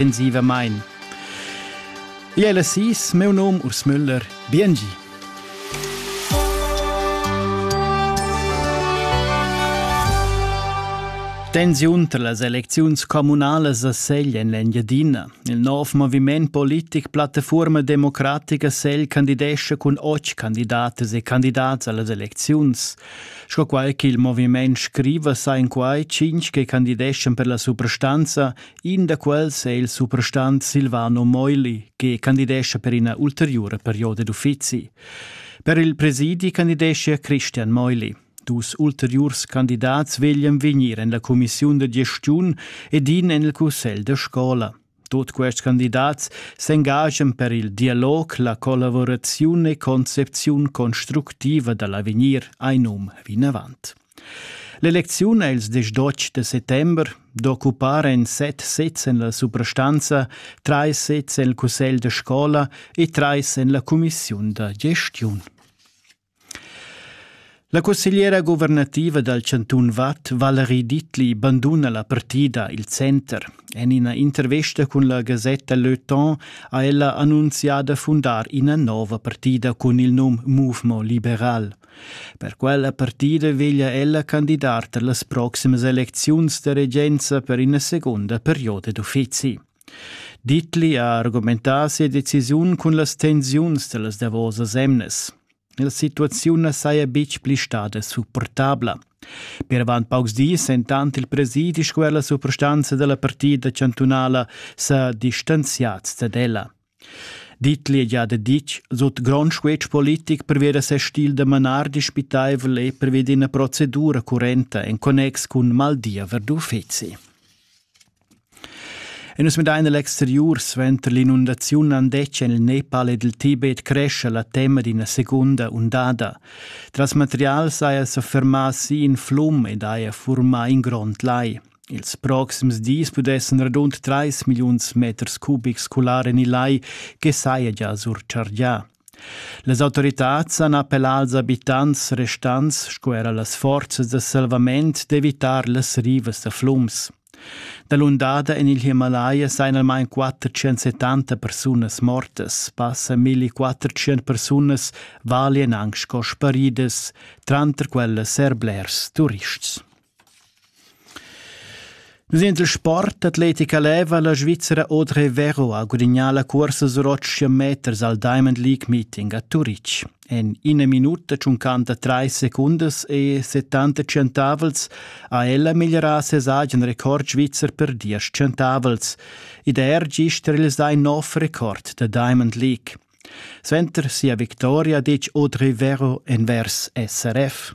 ensivamain. Igl è la sis, meu nom Urs Müller, biengi. Tensiun tra las elecziuns communalas a Segl en l'Engiadina. Il nov moviment politic Plattforma Democratica Segl candidescha cun otg candidatas e candidats a las elecziuns. Sco quai ch'il moviment scriva sa in quai cinc che candideschan per la suprastanza In da quels è il suprastant Silvano Moili che candidescha per ina ulteriura perioda d'uffizi. Per il presidi candideschia Christian Meuli. Dus ulteriurs candidats veglian vegnir en la cumissiun da gestiun ed in en il cussegl da scola. Tut quests candidats s'engagian per il dialog, la collavuraziun e concepziun constructiva da l'avegnir, ein um vinavant. L'elecziun ha ils diesch d'otg da settember d'occupar en set sezs en la suprastanza, trais sezs en il cussegl da scola e trais en la cumissiun da gestiun. La cussegliera guvernativa dal chantun Vad, Valerie Dittli, banduna la partida Il Center. En ina intervesta cun la gasetta Le Temps ha ella annunzià da fundar ina nova partida cun il num Mouvement liberal. Per quella partida veglia ella candidar per las proximas elecziuns da regenza per ina segunda perioda d'uffizi. Dittli ha argumentà sia decisiun cun las tensiuns da las davosas emnas. La situaziun na saja betg pli stada supportabla. Per avant paucs dis, entant il presidi sco er la suprastanza da la partida chantunala sa distanziads dad ella. Dit l'egliada ditg sut grond squetsch politic pervia da ses stil da manar dispitaivel e pervia d'ina procedura currenta en connex cun maldia verdu uffizi. E nus midain l'exteriur suenter l'inundaziun andetg en il Nepal ed il Tibet cresce la tema d'ina segunda undada. Tras material saja sa fermà si in flum ed haja furmà in grond lai. Ils proxims dis pudessan radund trais milliuns meters cubics cular en il lai che saja gia surchargià. Las autoritads han appellà als abitants restants sco era las forzas da salvament d'evitar las rivas da flums. Dalundada en il Himalaya sajan almain 470 persunas mortas, passa 1400 persunas valian anc sco sparidas, tranter quellas er blers turists. Nus ein il sport atletica leva la Svizzera Audrey Vero ha gudignà la cuorsa sur otg meters al Diamond League Meeting a Turitg. En ina minuta tschuncanta trais secundas e 70 centavels ha ella migliorà ses agen record svizzer per diesch centavels. Id er gist il sein nov record da Diamond League. Sventer sia victoria ditg Audrey Vero envers SRF.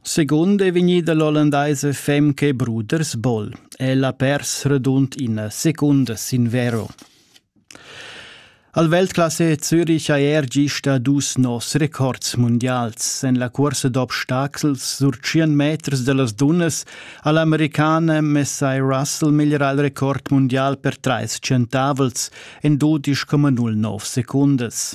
Secund è vegnida l'ollandaisa femca e bruders Boll. Ella ha pers radund ina secunda sin vero. Al Weltklasse Zürich ha er gista dus nos records mundials. En la cursa d'obstacels surtschian meters da las dunnas ha l'americana Messai Russell migliorà il record mundial per trais centavels en 12,09 secundas.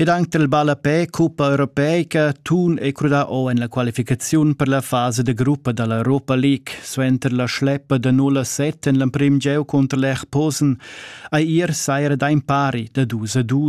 Ed anche il ballapè cuppa europeica tun è crudà o en la qualificaziun per la fasa de gruppa dall'Europa League suenter la schleppa da 0 a 7 en l'emprim gieu cunter l'Erposen. Ei ir saira da impari da 2 a 2